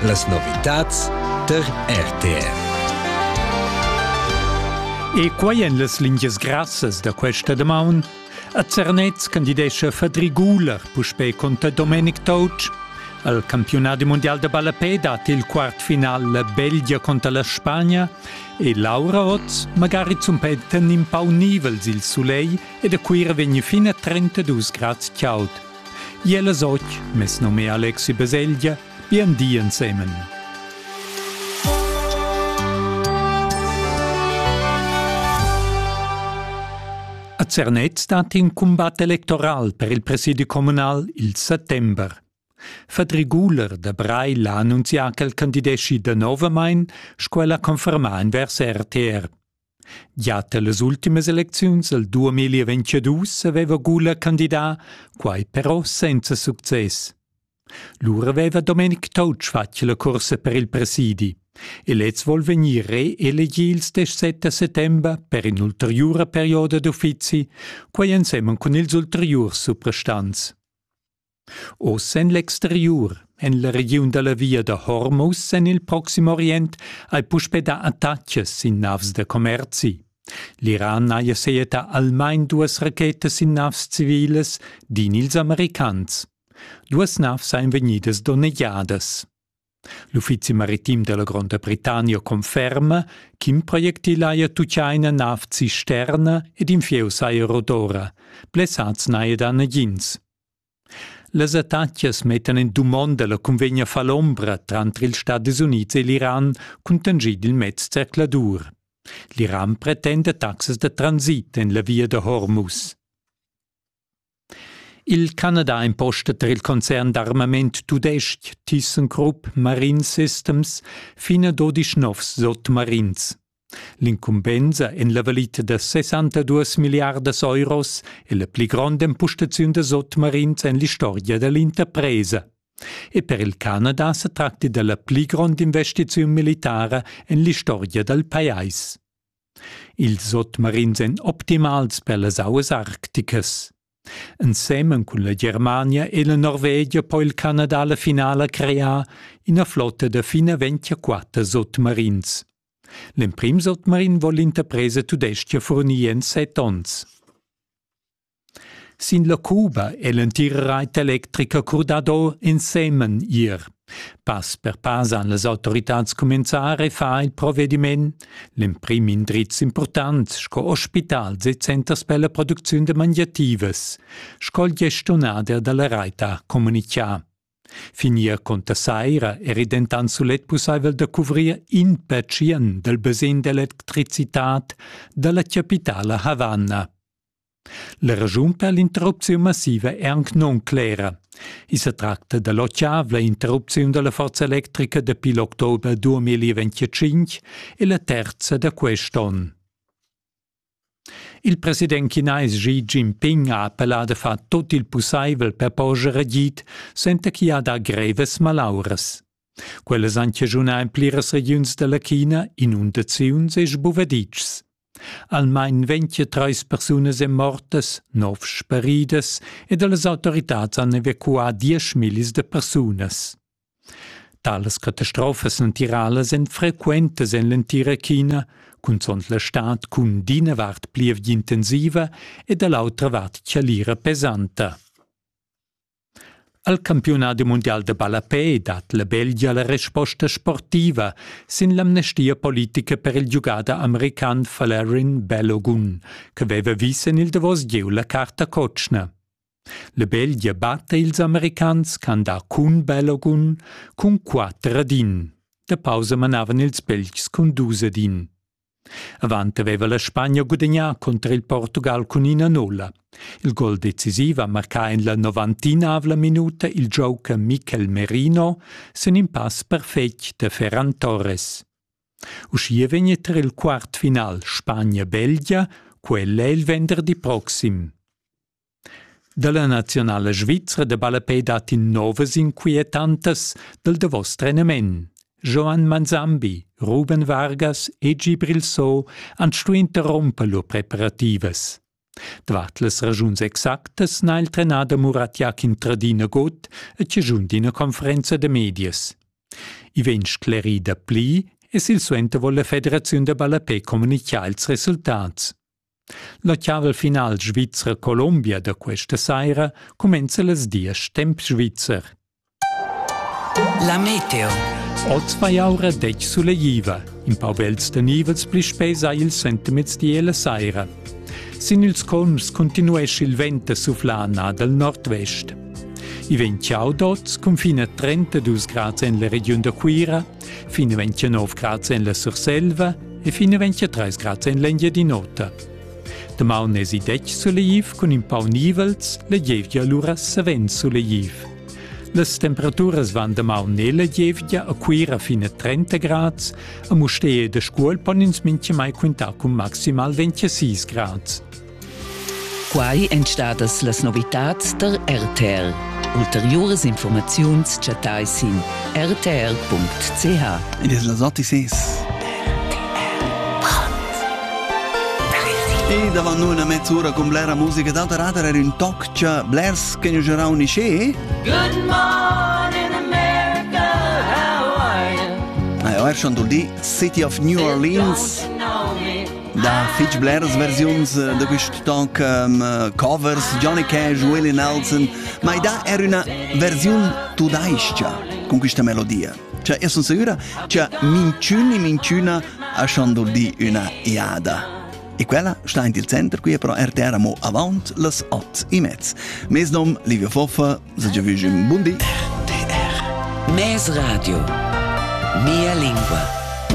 Las novitads tar RTF. E quai en las lingias grassas da questa damaun. A Zernez candidescha Fadri Guler puspè conter Domenic Touch. Al campiunat mundial da ballapè dat il quartfinal la Belgia conter la Spagna e Laura oz magari zumpetta in pau nivels il sulegl ed a Cuira vegn fin a 32 grads chaud. Jel es och, mes nom è Alexi Beseglia, bien di ensemen. A Zernez stat in combat electoral per il presidi comunal il settember. Fedri Guler da Breil ha annunzià ch'el candideschi danovamain, sco el ha confermà in vers RTR. Gia tellas ultimas elecziuns el 2022 aveva Gula candidà, quai però senza success. Lura aveva Domenic Toutsch fatg la cursa per il presidi e lez vuol vegnir reelegì il stesso 7 settembre per in'ulteriura perioda d'uffizi, quai ensemen cun ils ulteriurs suprastants. Oz en l'exteriur, en la regiun da la via da Hormuz en il Proxim Orient, hai puspè dà attatgas sin navs da commerzi. L'Iran haja sejetà almain duas rachetas sin navs civilas, din ils Americans. Duas navs sajan vegnidas donnegiadas. L'uffizi maritim della Gronda Britannia conferma ch'in projectil haja tucchà ina nav cisterna ed in fieu saja rodora. Blessats n'haja dà nagins. Las attacchias mettan en dumonda la cunvegna falombra tranter ils Stadis Unids e l'Iran cun tangid il mez zercladur. L'Iran pretenda taxas da transit en la via da Hormuz. Il Canada imposta tar il concern d'armament tudestg ThyssenKrupp Marine Systems fina dodisch novs sotmarins. L'incumbensa en la valita da 62 milliardas euros è la pli gronda impostaziun da sotmarins en l'istorgia da l'interpresa. E per il Canada sa tracti della pli grond investiziun militara en l'istorgia dal pajais. Ils sotmarins èn optimals per las auas arcticas. Ensemen cun la Germania e la Norvegia po il Canada la finala crear ina flotta da fin a 24 sotmarins. L'emprim sotmarin vò l'interpresa tudestga furnir en set onns. Sin la cuba è l'entira rait electrica curdado ensemen ier. Pass per pass han las autoritads cumenzà a far il provediment. L'emprim indriz impurtant sco ospitals e centers per la producziun da magliativas, sco il gestiunader da la rait ha communitgà. Finir conter saira eri dentant sulet pussaivel da cuvrir in pertschien dal basegn d'electricitad da la chapitala Havanna. La raschun per l'interrupziun massiva è anc nunclera. I sa tracta da l'otschavla interrupziun da la forza electrica dapi l'october 2025 e la terza da quest'onn. Il president chinais Xi Jinping ha appellà da far tut il pussaivel per porscher agid, senza ch'i ha dà grevas malauras. Quellas han chaschunà en pliras regiuns da la China inundaziuns e sbuvaditschs. Almain 23 persunas èn mortas, 9 sparidas e da las autoritads han evacuà 10.000 da persunas. Talas catastrofas natiralas èn frequentas en l'entira China, cunzont la stad cun d'ina vart plievgia intensiva e da l'autra vart chalira pesanta. Al campiunadi mundial da ballapè dat la Belgia la resposta sportiva sin l'amnestia politica per il giugader american Valerin Bellogun, che veva vis en il davos gieu la carta cotschna. La Belgia batta ils americans ch'han dà cun Bellogun cun quatter ad in. Da pausa manavan ils Belgs cun dus ad in. Avant aveva la Spagna gudagnà cunter il Portugal cun ina nulla. Il gol decisiv ha marcà en la novantinavla minuta il gioca Mikel Merino sin in pass perfetg da Ferran Torres. Uschia vegn tar il quart final Spagna-Belgia, quella il venderdi proxim. Dalla nazionala svizra de ballapei dat in novas inquietantas dal davos trenament. Joan Manzambi, Ruben Vargas e Gi Brilsot han stuì interromper lur preparativas. Davart las ragiuns exactas n'ha il trenader Murat Jakin tradina god e cigiun d'ina conferenza de medias. I vegn sclerì da pli e silsuenter vuol la Federaziun da ballapei communicar ils resultats. La chaval final Svizra-Colombia da questa saira cumenza las diesch temp svizzer. La meteo. Oz vai aura dec suleiva. In pau vels da nivels pli spesa il sentimez di e la saira. Sin ils convs continuesce il vent a suflar nà dal nord-vest. I vegn ciao d'oz cun fine 32 grads en la regiun da Cuira, Fin 29 grads en la Surselva e fin 23 grads en l'Engiadin'Ota. Damaun esi detg suleiv cun in pau nivels, la gievgia lura savens suleiv. Las temperaturas van damaun e la gievgia a Cuira fin a 30 grads, a Mustee e da Scuol pon ins mintga mai quintar cun maximal 26 grads. Quai èn stadas las novitads tar RTR. Ulteriuras informaziuns chattai sin rtr.ch. Ed es las anticis. E davant noi una mezz'ora con blera musica da radar era un toccia blers che ne gerà un isce. Good morning America, how are you? Ah, er schon dul di City of New Orleans. Da fich bleras versiuns eh, da quist toc um, covers, Johnny Cash, Willie Nelson, ma i dà er üna versiun tudais-cha con quista melodia. Cioè, io son sicura che minchün e minchüna ha schon dul di üna iada. E quella sta in il center qui però RTR mo avant las 8 e mezz. Mes nom Livio Foffa, se già vige un buon di. RTR, Mes Radio, Mia lingua.